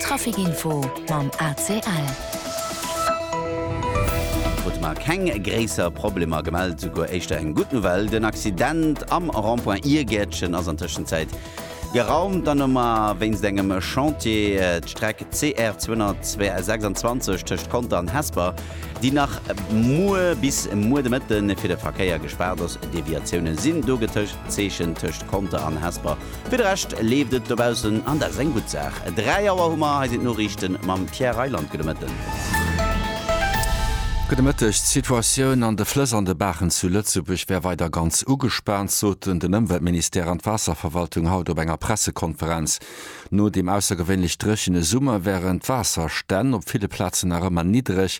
Trafic Info mam ACL. Krute mer keng gréisser Problemer gemellt. Souguer éischter eng gutt Nouvelle, den Accident am Rond-point Iergäertchen ass an Tëschenzäit geraumt. Dann hu mer wéinst engem Chantier d'Streck CR 226 tëscht Conter an Hesper, déi nach muer bis muer de Mëtten fir de Verkéier gespaart ass. Deviatioune sinn do getëscht. Zeechen tëscht Conter an Hesper. Fir de Rescht leeft et dobaussen an dat ass eng gutt Saach. 3 Auer hu mer. Hei sinn d'Noriichten mam Pierre Reyland. Gudde Mëtten. Gudde Mëtteg. D'Situatioun an de Flëss an de Baachen zu Lëtzebuerg wär weider ganz ugespaant, soten den Ëmweltministère an d'Waasserverwaltung haut op enger Pressekonferenz. No dem aussergewéinlech dréchene Summer wären d'Waasserstänn op ville Plazen nach ëmmer niddereg.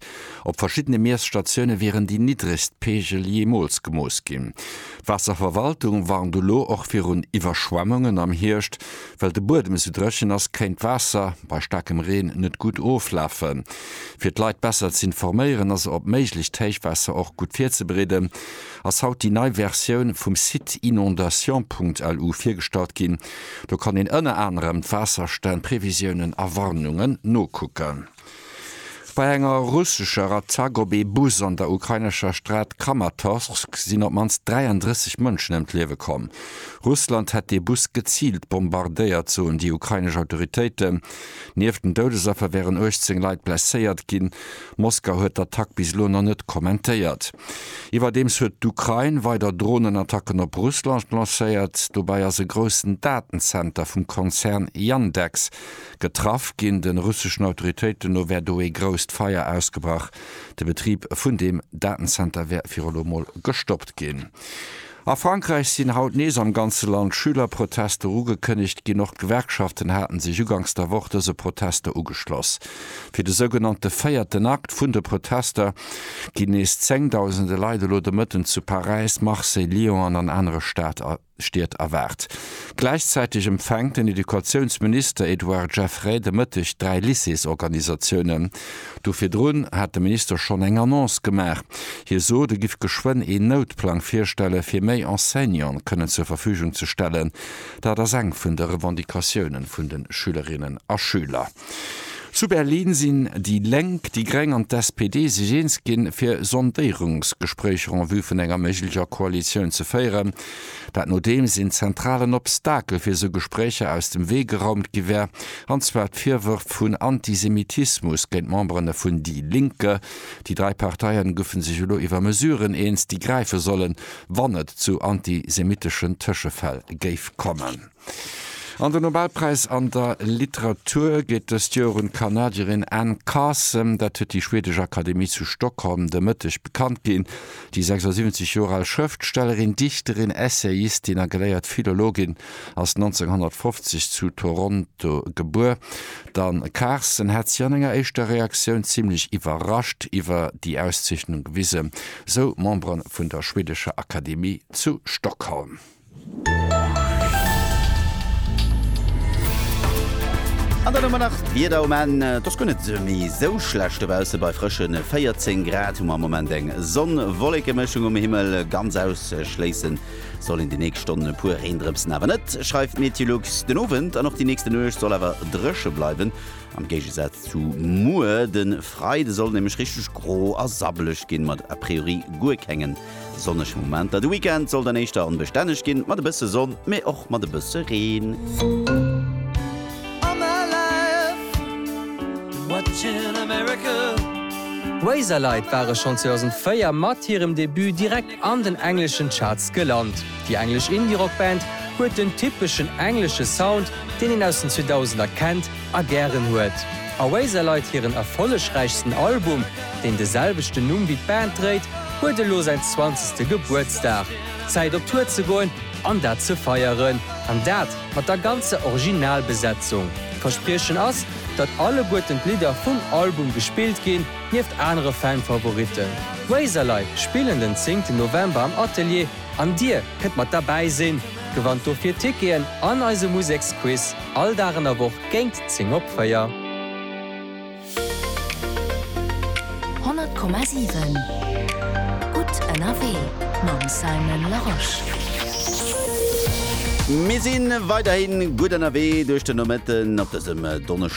Op verschiddene Miesstatioune wieren déi niddregst Peegel jeemools gemooss ginn. D'Waasserverwaltung warnt elo och virun Iwwerschwemmungen am Hierscht. Well de Buedem esou dréchen ass, kéint d'Waasser bei staarkem Reen net gutt oflafen. Fir d'Leit besser ze informéieren a se op méiglecht Héichwaasser och gutt virzebereeden, ass haut déi nei Versioun vum Site inondations.lu virgestallt ginn. Do kann een ënner anerem d'Waasserstänn, Previsiounen a Warnungen nokucken. Bei enger russescher Attack op ee Bus an der ukrainescher Stad Kramatorsk sinn op d'mannst 33 Mënschen ëm d'Liewe komm. Russland hätt dee Bus geziilt bombardéiert, soen déi ukrainesch Autoritéiten. Nieft den Doudesaffer wären 18 Leit blesséiert ginn. Moskau huet d'Attack bis elo nach net kommentéiert. Iwwerdeems huet d'Ukrain weider Dronenattacken op Russland lancéiert. Dobäi ass e groussen Datenzenter vum Konzern Yandex Getraff ginn. De russeschen Autoritéiten no wär do ee grousst Feier ausgebrach. De Betrib vun deem Datenzenter wär viru elo mol gestoppt ginn. A Frankräich sinn haut nees am ganze Land Schülerprotester ugekënnegt ginn. Och d'Gewerkschaften haten sech uganks der Woch dëse Protester ugeschloss. Fir de sougenannte véierten Akt vun de Protester ginn nees zéngdausende Leit elo de Mëtten zu Paräis, Marseille, Lyon an an anere Stater Stied erwaart. Gläichzäiteg empfänkt den Educatiounsminister Edouard Geffray de Mëtteg dräi Lycéesorganisatiounen. Do virdrun hat de Minister schonn eng Annonce gemaach. Hie sot, e giff geschwënn een Noutplang virstelle fir méi Enseignanten kënnen zur Verfügung ze stellen. Dat ass eng vun de Revendicatiounen vun de Schülerinnen a Schüler. Zu Berlin sinn déi Lénk, déi Gréng an d'SPD sech eens ginn, fir Sondéierungsgespréicher en vue vun enger méiglecher Koalitioun ze féieren. Dat nodeems een zentralen Obstakel fir esou Gespréicher aus dem Wee geraumt gi wär, an zwar d'Virwërf vun Antisemitismus géint Memberen vun Die Linke. Déi dräi Parteien goufen sech elo iwwer Mesuren eens, déi gräife sollen, wann et zu antisemiteschen Tëschefäll géif kommen. An den Nobelpräis an der Literatur geet dëst Joer un d'Kanadierin Anne Carson. Dat huet déi schwedesch Akademie zu Stockholm de Mëtteg bekannt ginn. Déi 76 Joer al Schrëftstellerin, Dichterin, Essayistin a geléiert Philologin ass 1950 zu Toronto gebuer. D'Anne Carson hätt sech an enger éischter Reaktioun zimmlech iwwerrascht iwwer déi Auszeechnung gewisen, sou Membere vun der schwedescher Akademie zu Stockholm. An dann hu mer nach d'Wieder um Enn. Et ass guer net méi esou schlecht dobaussen, bei frësche 14 Grad hu mer am Moment eng Sonn-Wollekemëschung um Himmel. Ganz ausschléisse soll een déi nächst Stonnen e puer Reendrëpsen awer net, schreift Meteolux. Den Owend an och déi nächste Nuecht soll awer dréche bleiwen, am Géigesaz zu muer. De Freide soll nämlech richteg gro a sabbeleg ginn, mat a priori guer kengen Sonneg Momenter, de Weekend soll dann éischter onbestänneg ginn, mat e bësse Sonn, mee och mat e bësse Reen. Razorlight ware schonn 2004 mat hirem Debut direkt an den engleschen Charts gelant. Déi englesch Indie-Rock-Band huet den typeschen englesche Sound, deen een aus den 2000er kennt, a gären huet. Oasis leit hiren erfollegräichsten Album, deen de selwechten Numm wéi d'Band dréit, huet elo säin zwanzegste Gebuertsdag. Zäit op Tour ze goen an dat ze feieren. An dat mat der ganzer Originalbesetzung. D'Verspriechen ass, datt alleguerten d'Lidder vum Album gespillt ginn, nieft anere Fan-Favoritten. D'Oasis leit spillen den zéngten November am Atelier an dir kënnt mat derbäi sinn. Gewannt dofir Ticketen an eise Museksquiz. All Dag an der Woch géint 10 op 4. 100,7 Gutt ënnerwee mam Simon Larosche. Mir si weiderhi gutt ënnerwee duerch den Nomëtten op dësem Donneschdeg.